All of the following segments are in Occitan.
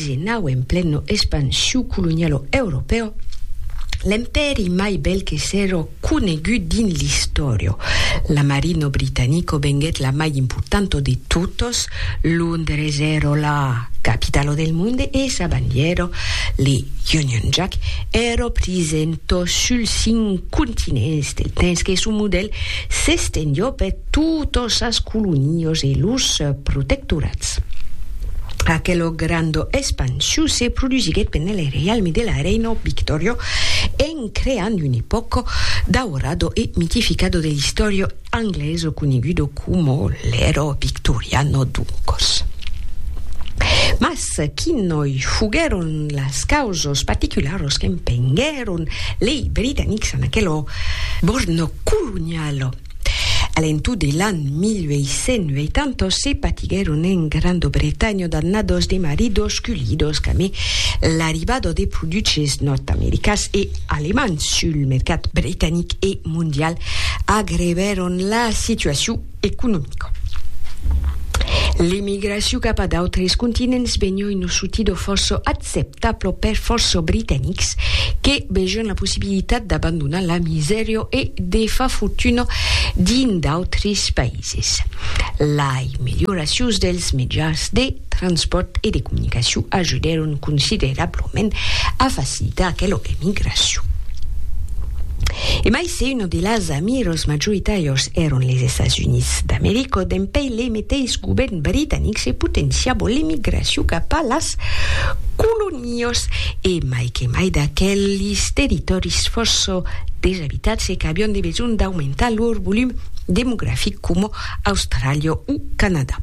Genau en pleno expansiu colonialo europeo, l'empèri mai bèl que s'èro conegut dins l'istòrio. La marino britanico venguèt la mai importanto de totos, Londres èro la capitalo del monde e sa bandièro, le Union Jack, èro prisento suls cinc continents del temps que son modèl s'estendió per totos sas colonios e los protectorats. Aquelo grando expansiu se produsiguèt pendent le reialme de la reina Victoria en creant un epòca daurado e mitificada de l'istòria anglesa coneguda coma l'era victoriana doncas. Mas quinòi foguèron las causas particulara qu'empenguèron lei britanics en aquela borna coloniala? A l'entunt de l'an 1880 se patiguèron en Granda Bretanha d'annadas de maridos culhidos qu'amé l'arribada de produches nòrd-americans e alemands sul mercat bretanic e mondial agreuvèron la situacion economica. L'emigracion cap a d'autres continents benhòi nosutida fòrça accepta pro per fòrça britanics que vejon la possibilitat d'abandonar la misèria e de far fortuna dins d'autres païses. Lai melhoracions dels mejans de transpòrt e de comunicacion ajudèron considerablament a facilitar aquela emigracion. E mai se una de las amiras majoritàrias èron les Estats Units d'America, dempeis le meteis govèrn britanic se potenciava l'emigracion cap a las Las colonias, e mai que mai d'aquelis territòris fòrça desabitads e qu'avián de besonh d'aumentar lor volum demografic coma Austràlia o Canadà.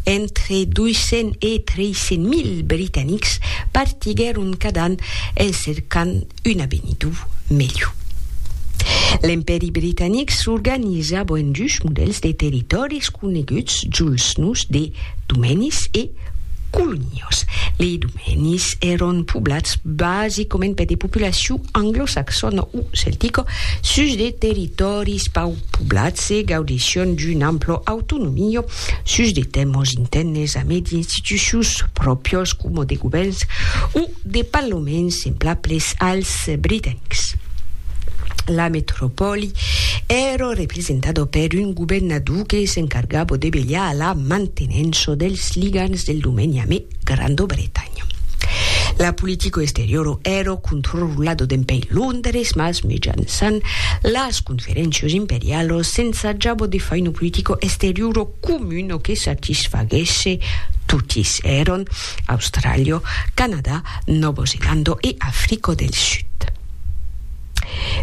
Entre 200 e 300 mil britanics partiguèron cada an en cercant Un abenidor melhor. L'Empèri britanic s'organizava en dus modèls de territòris coneguts juls nòus de domenis e colonias. Lei domenis èron poblats basicament per de populacion anglosaxona o celtica sus de territòris pauc poblats e gaudession d'una ampla autonomia sus de tèmas intèrnes a mai d'institucions pròpias coma de govèrns o de palomens semblables als britanics. La metropòli èra representada per un governador que s'encargava de velhar a la mantenença dels ligams del domeni amé Granda Bretanha. La politica exteriora èra controlada d'empèi Londres, mas mejançan las conferéncias imperialas s'ensajava de fai una politica exteriora comuna que satisfaguèsse totis. Èran Austràlia, Canadà, Nòvo Zelanda e Africa del Sud.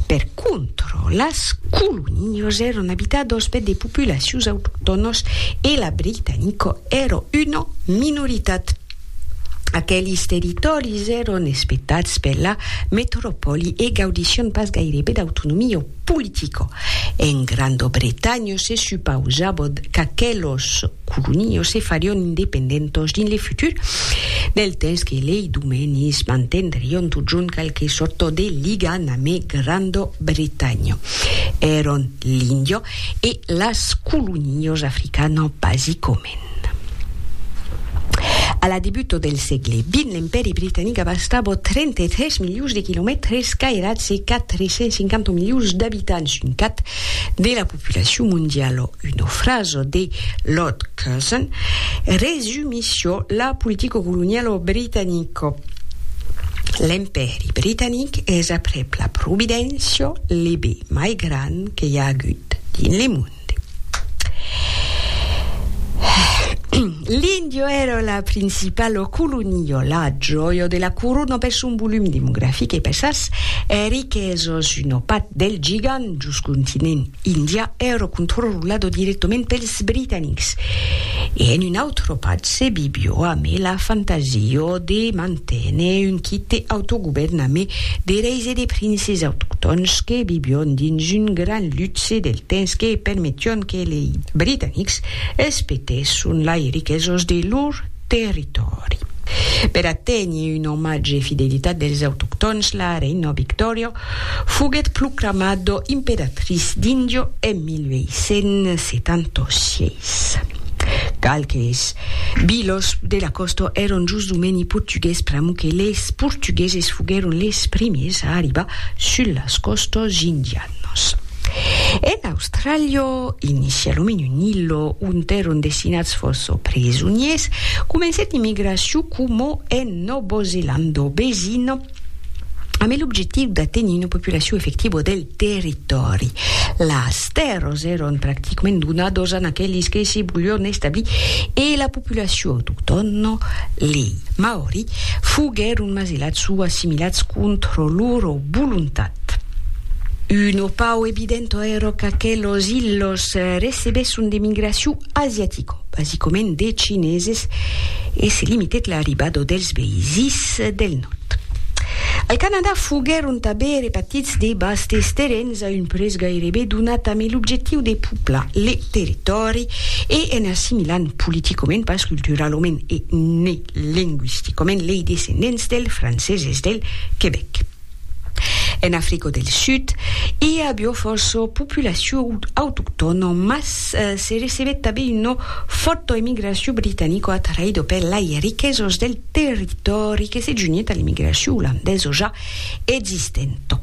Per contra, las colonias èran abitadas per de populacions autoctònas e la britanica èra una minoritat. Aqueles territòris èran espetats per la metropòli e gaudissián pas gairebe d'autonomia politica. En Granda Bretanha se supausava qu'aquelas colonios se farion independentos dins le futur, del temps que lei domenis mantendrion totjorn qualque sorto de liga name Grando Bretanho. Èron l'Indio e las colonios africano basicomèn. A la debuto del sègle vint l'Empèri Britanic abastabo 33 milions de quilomètres cairats e 450 milions d'abitants, un cat de la populacion mondiala, una frasa de Lord Curzon resumissiá la politica coloniala britanica, L'Empèri britanic es aprèp la Providéncia le be mai grand que i a agut dins le monde. L'Indio èra la principala colonia, la jòia de la corona per son volum demografic e per sas riquesas. Una part del gigant dus continent indià èra controlada dirèctament pels britanics e en una autra part se vivió amé la fantasia de manténer un quite autogovèrn amé de reis e de princes autoctòns que vivión dins un gran luxe del temps que permetión que e lei britanics espetèsson lai riquesos de lor territòri. Per aténher un omatge e fidelitat dels autoctòns la reina Victòria foguèt proclamada imperatrice d'Índia en 1876. Qualques vilas de la còsta èran jos domeni portugués pr'amor que les portugueses foguèron les primiers a arribar sus las còstas indianas. nos. En Austràlia, inicia lo menu Nilo, ont èron destinats fòrça presoniers, comencèt l'immigracion coma en Nòva Zelanda vesina, amé l'objectiu d'atenir una populacion efectiva del territòri. Las tèrras èron practicament donadas a aqueles que se volián establir e la populacion autoctòna, lei Maori, foguèron masilats o assimilats contra lor Volontat. Un opau evident ero qu'aqué los ilhos recebesson de migracion asiatico, basicament de chineses, e se limitèt l'arribado dels veisís del nòrd. Al Canadà foguèron tabé repatits de bastes terrens a un prés gairebe donat amé l'objectiu de puplar le territòri e en assimilant politicament, pas culturalament e ne lengüisticament lei descendents del franceses del Quebec. En Africa del Sud, i a avió fòrça populacion autoctòna, mas se recebèt tanben una fòrta emigracion britanica atraïda per lei riquesas del territòri que se junhèt a l'emigracion olandesa ja existent.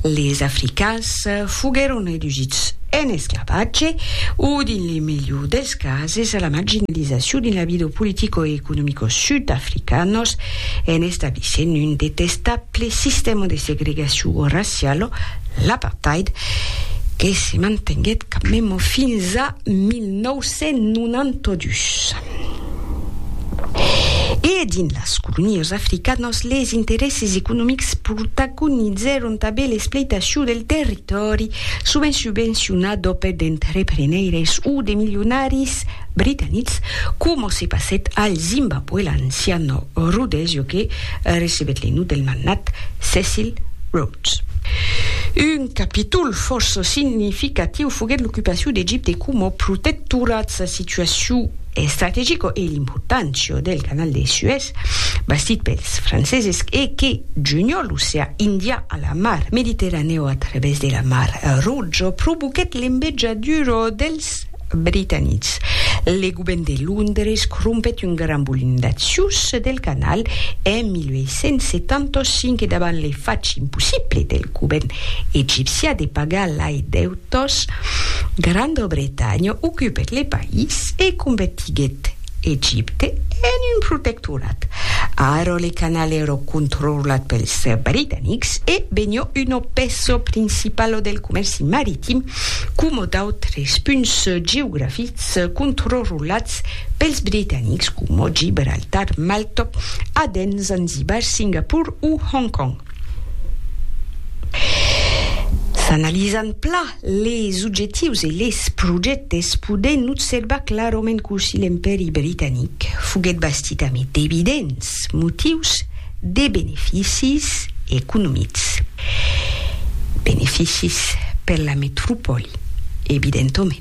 Les africans foguèron redusits en esclavatge o, dins le melhor dels cases, a la marginalizacion dins la vida politico e economico sud-africanos en establissent un detestable sistèma de segregacion raciala, l'apartheid, que se mantenguèt quand mème fins a 1992. E dins las colonias africanas, les interèsses economics protagonizèron tanben l'espleitacion del territòri, sovent subvencionat d'òpèt d'entrepreneires o de milionaris britanics, coma se passèt al Zimbabwe, l'ancian Rhodèsia que recebèt le nom del magnat Cecil Rhodes. Un capítol fòrça significatiu foguèt l'ocupacion d'Egipte coma protectorat, sa situacion estrategica e l'importància del canal de Suèz bastit pels franceses e que junha l'oceà Indian a la mar Mediterranèu a travèrs de la mar Roja provoquèt l'embejadura dels Britanics. Le govèrn de Londres crompèt un gran volum d'accius del canal en 1875 e davant le fach impossible del govèrn egipcià de pagar lai deutes Tosh, Grandobretanha ocupèt le país e convertiguèt Egipte en un protectorat. Ara le canal èra controllat pels britanics e venió una pèça principala del comèrci maritim coma d'autres punts geografics controlats pels britanics coma Gibraltar, Malta, Aden, Zanzibar, Singapor o Hong Kong. S'analizan pla les objectius e les projèctes, podèm observar clarament cossí l'Empèri britanic foguèt bastit amé d'evidents motius de beneficis economics. Beneficis per la metropòli, evidentament.